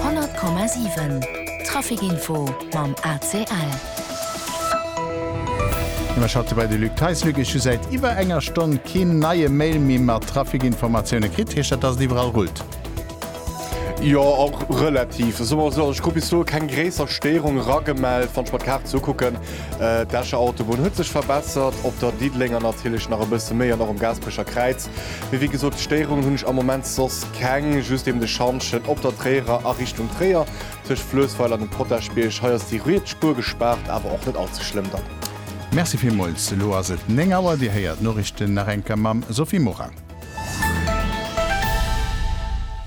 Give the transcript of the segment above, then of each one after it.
100,7 Trafic info mam ACL. Ëmmer schalte dobäi de Luc Theis. Luc, ech hu säit iwwer enger Stonn keen neie Mail méi mat Trafic-Informatioune kritt. Heescht dat, dass et iwwerall rullt? Jo, och relativ. Soe mer esou, ech krut bis elo keng gréisser Stéierung eragemellt. Wann ech mer d'Kaart esou kucken, d'Escher Autobunn huet sech verbessert op der Diddelénger natierlech nach e bësse méi an och um Gaasperecher Kräiz. Mee wéi gesot, Stéierungen hunn ech am Moment soss keng, just eben de Schantjen op der Tréierer a Richtung Tréier, tëscht Fluessweiler an dem Potaschbierg. Hei ass déi riets Spuer gespaart, awer och net all ze schlëmm dann. Merci villmools. Elo ass et 9 Auer, Dir héiert d'Norichten nach eng Kéier mam Sophie Morang.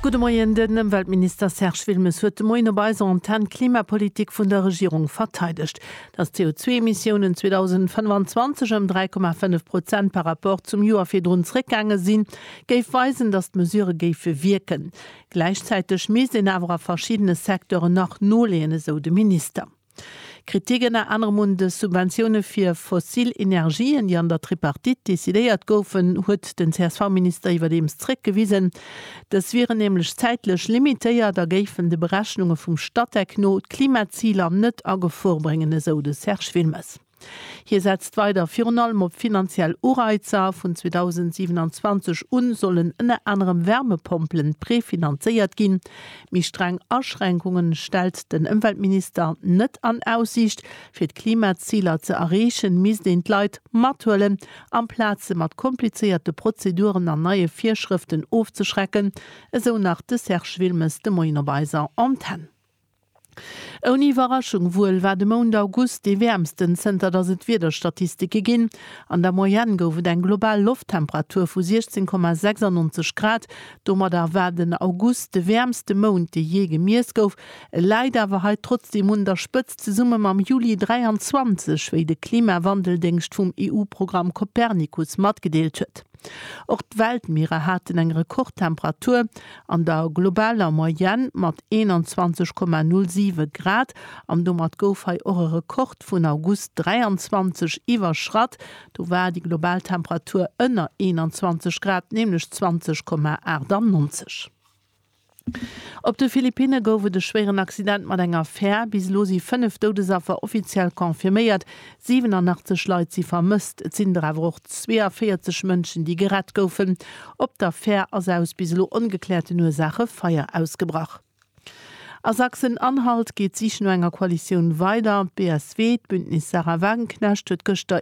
Gudde Moien, Den Ëmweltminister Serge Wilmes huet de Moien op eiser Antenn d'Klimapolitik vun der Regierung verteidegt. dass d'CO2-Emissiounen 2025 ëm 3,5 Prozent par rapport zum Joer virdrun zréckgaange sinn, géif weisen, dass d'Mesurë géife wierken. Gläichzäiteg misst een awer a verschiddene Secteuren nach noleeën, esou de Minister. Kritik ënner anerem un de Subventioune fir fossil Energien, déi an der Tripartite decidéiert goufen, huet den CSV-Minister iwwerdeems zréckgewisen. Dës wieren nämlech zäitlech limitéiert a géifen de Berechnunge vum Statec no d'Klimaziler net a Gefor bréngen, esou de Serge Wilmes. Hie setzt weider virun allem op finanziell Ureizer, Vun 2027 un sollen ënner anerem Wärmepompelen prefinanzéiert ginn. Méi streng Aschränkunge stellt den Ëmweltminister net an Aussiicht. Fir d'Klimaziler ze erreechen, misst een d'Leit mathuelen Amplaz se mat komplizéierte Prozeduren an neie Virschrëften ofzeschrecken, esou nach de Serge Wilmes de Moien op eiser Antenn. Ouni Iwwerraschung wuel war de Mount August dee wäermsten, zënter datt et Wiederstatistike ginn. An der Moyenne gouf et eng global Lofttemperatur vu 16,96 Grad. Domadder war den August de wäermste Mount, dee jee gemiess gouf. E läit awer hei trotzdeem un der Spëtzt. zesumme mam Juli 23, wéi de Klimawandeldéngscht vum EU-Programm Copernicus matgedeelt huet. Och d'Weltmierer haten eng Rekordtemperatur, an der globaler Moyenne mat 21,07 Grad, an domat gouf hei och e Rekord vun August 23 iwwerschratt, do war déi global Temperatur ënner 21 Grad, nämlech 20,98. Op de Philippinne gouf et e schwéieren Accident mat enger Fär. Bis elo si 5 Doudesaffer offiziell confirméiert. 87 Leit si vermësst. Et sinn der awer och 42 Mënschen, déi gerett goufen. Op der Fär ass aus bis elo ongekläerten Ursaache Feier ausgebrach. A Sachsen-Anhalt geet d'Sich no enger Koalitioun weider. D'BSW, d'Bündnis Sarah Wagenknecht, huet gëschter